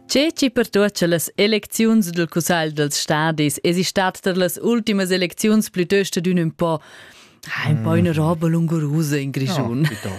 Tge chi pertuot cha las elecziuns dal Cussagl dals stadis esi stat tar las ultimas elecziuns plütöst adün ün po un po una roba lungurusa in Grischun. No,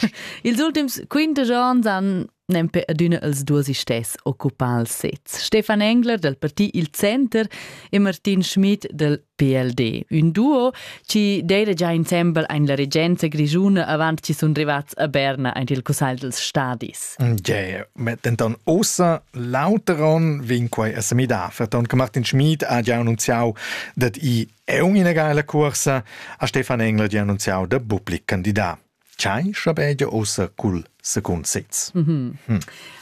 Ils ultims 15 ans han nempe adüna els duos istess occupà il sez. Stefan Engler del parti Il Center e Martin Schmid del PLD. Un duo chi deida già insembel ein la regenza grischuna avant chi sun rivats a Berna aint il cussagl dels stadis. Yeah, denton ossa l'auteron vin quai a semidar, ferton che Martin Schmid ha già annunziau dat i è ina geila cuorsa a Stefan Engler di annunziau da public candidat. Tgei schabegia ussa cul secund sez?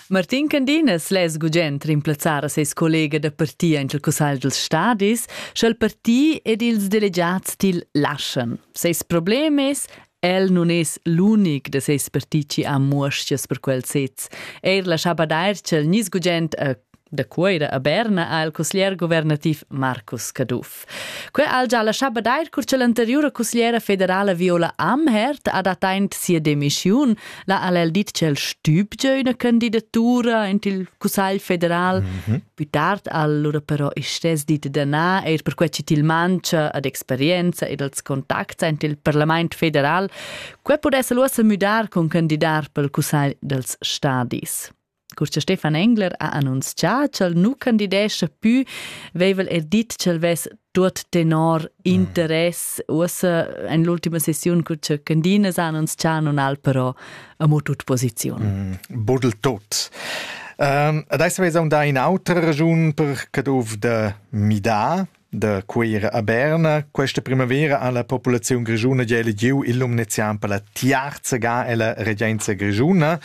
Martin Candinas less gugent rimplazzar a ses collega da parti en il cussagl dals stadis, sch'el parti ed ils delegads til laschan. Ses problem è, el nun es l'unic da seis parti chi ha muoschias per quel sez. Eir la chapa d'Airchel gnís gugent a Da Cuoira a Berna ha il cusglier guvernativ Marcus Caduff. Quei ha già lascià badair cur che l'anteriura cusgliera federala Viola Amherd ha dat aint sia demissiun. La ha el dit ch'el stübgia üna candidatura in il Cussagl federal. Mm -hmm. Più tard ha allora però il stes dit da na, eir per quai chi til mancha ad experienza ed als contacts int il Parlament federal. Quai pudess el uossa müdar cun candidar pel Cussagl dels Stadis. Cur cha Stefan Engler ha annunzià ch'el nu candidescha pü, veivel el dit ch'el vess tuot tenor mm. interess. Uossa in l'ultima sessiun cur cha Candinas ha annunzià non al però amo tut posiziun. Mm. Budel tot. Um, adesso vezam da in auter ragiun per Caduv da Mida. Da Cuira a Berna. Questa primavera ha la populaziun grischuna gia elegiu il num nezian per la tiarza ga ella regenza grischuna.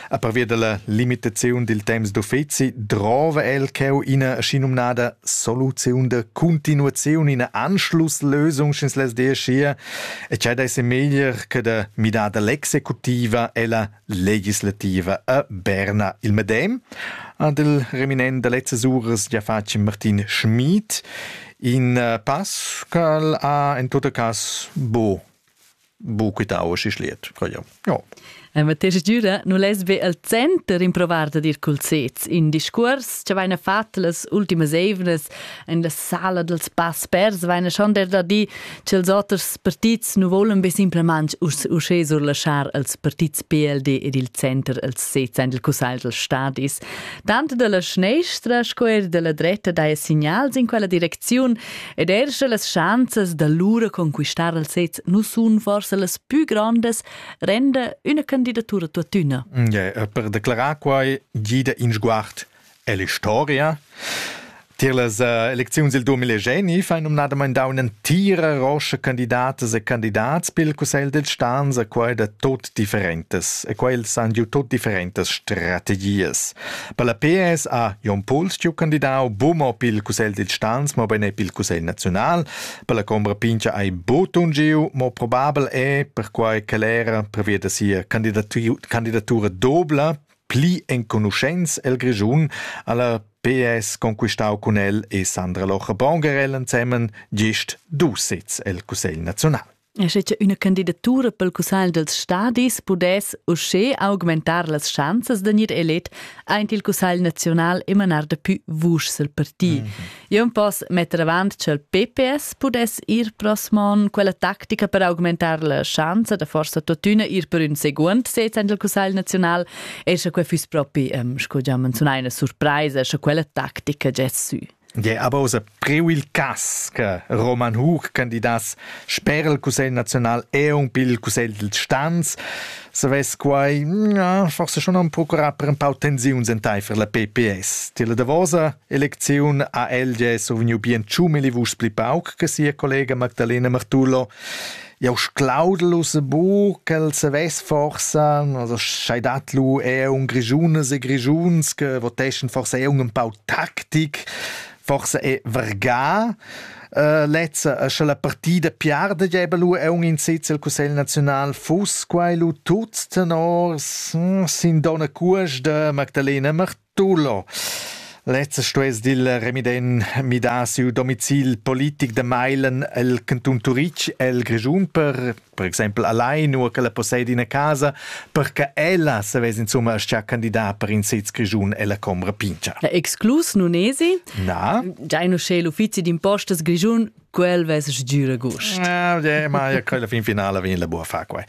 A parvia dalla limitaziun dil temps d'uffeci drova el cheu ina schinumnada soluziun da continuaziun, ina Anschlusslösung schins las deschia e tgei dei se meglier che da midar dall'executiva ella legislativa a Berna. Il medem ha il reminent da lezzas uras già fatg Martin Schmid in eh, pass ch'el ha en tot cas bo bu quitau si schliet. Ja. La matescha giura nu less be al center improvar da dir cul sez in discuors che vaina fat las ultimas eivnas in la sala dels pass pers vaina schon der da di Ch'ils oters partits nu volan be simplamaing uschè surlaschar als partits PLD ed il center als sezs del cussagl dels stadis. Tanto dalla schnestra sco eir dalla dretta daja signals in quella direcziun ed eir sche las schanzas da lura conquistar al sez nu sun forse las pü grandes, renda üna candidatura tuottüna. Yeah, per declarar quai gida in sguard Ella historia Tier las uh, elecziuns il 2020 fa numnadamain dà un'entira roscha candidatas e candidats pel Cussegl dels Stans a quai da tot differentas e quels han giu tot differentas strategias. Per la PS ha Jon Puls giu candidau bumo pel Cussegl dels Stans, ma bene pel Cussegl naziunal. Per la combra pincha hai botun giu, ma probabel è perquai che era previa da sia candidatura dobla Pli enconuschents el Grischun ha la PS conquistau cun el e Sandra Locher-Bonger el ensemen gest dus sezs el Cussegl naziunal. E sche che üna candidatura pel Cussagl dels stadis pudess uschè augmentar las schanzas da gnir elet aint il Cussagl naziunal e manar dapü vuschs al parti. Mm -hmm. Jeu poss metter avant ch'el PPS pudess ir prosmon quella tactica per augmentar la schanza da forsa tuttina ir per ün seguond sez en il Cussegl naziunal e sche quei fuss propi, ähm, sco già menziunai, una surpresa, sche quella tactica gess sü. Ja, aber aus preu il cas che Roman Hug candidas sper il Cussegl naziunal e un più il Cussegl del Stans, se ves quai, ja, forse schon un procurà per un pau tensiuns entei per la PPS. Ti la davosa Elecziun ha LG survgniu bien tschummel vus pli pauc che sia collega Magdalena Martullo. Jau sclaudel uss bu ch'el savess forsa, also schai dat lu eher un Grigiunes e Grigiuns che voteschen forsa eher un pau taktik, forsa è verga. Uh, lezza uh, sche la partida piarda geba lu è un in sitz el Cussegl Naziunal fuss quai lu tuts tenors hm, sin donna Cuas de Magdalena Martullo Tulo. Lezza stuess dil remiden midar siu domicil politic da mailen el cantun Turitg el Grischun per per exempel allein u che la possedi ina casa per che ella savess insumma aschia candidar per in sez Grischun ella combra pincha. Exclus nun esi? Na. Giai nu sch'è l'uffizi d'impostas Grischun quel vess sgiura gust. Ja, ma ja, quella fin finala vegn la buca far quei.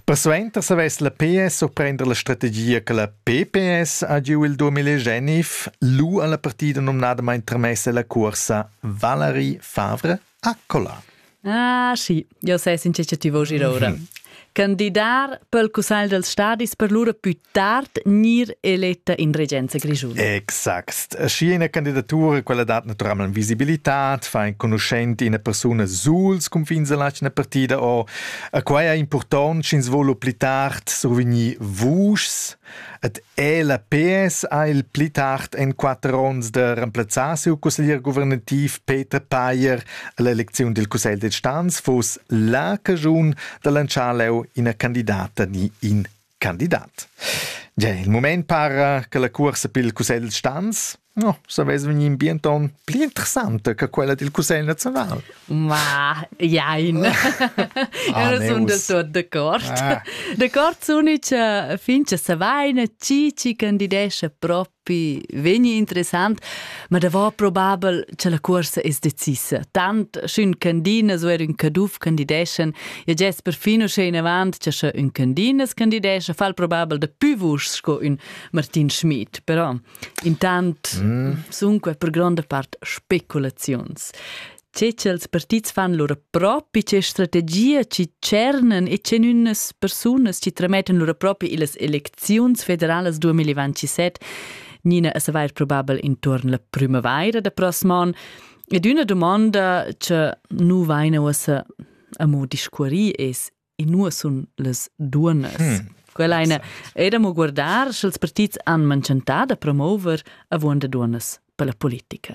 Persuenter se vess la PS surprender la strategia che la PPS ha giu il 2009 lu alla partida nomnadamain tramessa la cursa Valerie Favre a Cola. Ah, sì, io sai sincer che ti voglio ora. Mhm. Candidar per il Cussegl dels Stadis per lura più tard gnir eletta in regenza grischuna. Exact. Schi ina candidatura, quella dat naturalmein visibilità, fa enconuschent ina persuna suls confins della ina partida o. Quai è important, sch'ins vuol pli tard survegnir vuschs. Et la PS ha il pli tard en quatter onns de remplazzar siu consiglier guvernativ Peter Payer all'elezione del Cussegl de Stans fuss la cagiun de lanciar leu ina candidata ni in Candidat. Gia il mument para che la cuorsa pil Cussegl stans no, savess vegnir in bienton pli interessante che quella dil Cussegl nazional. Ma, jein. Ah, Io sono del tutto d'accordo. Ah. D'accordo, l'unica fin che se vaina, chi ci candidesce proprio pi vegni interessant, ma da va probabel che la cuorsa es decisa. Tant sch'ün candinas u er ün caduf candideschan, e gest perfin uschè in avant che sche ün candinas candidescha, fal probabel da pü vuschs sco ün Martin Schmid, però intant mm. sun que per gronda part speculaziuns. tge ch'ils partits fan lura propi, tge strategia chi tschernen e tgenünas persunas chi tramettan lura propi illas elecziuns federalas 2027, Nina a savair probabel intuorn la primavaira da prossm an. Ed üna domanda che nu vaina uossa amo discuorì es e nu sun las duonnas. Hmm. Quella eine era mo guardar, sch'ils partits han manchantà da promover avuonda duonnas per la politica.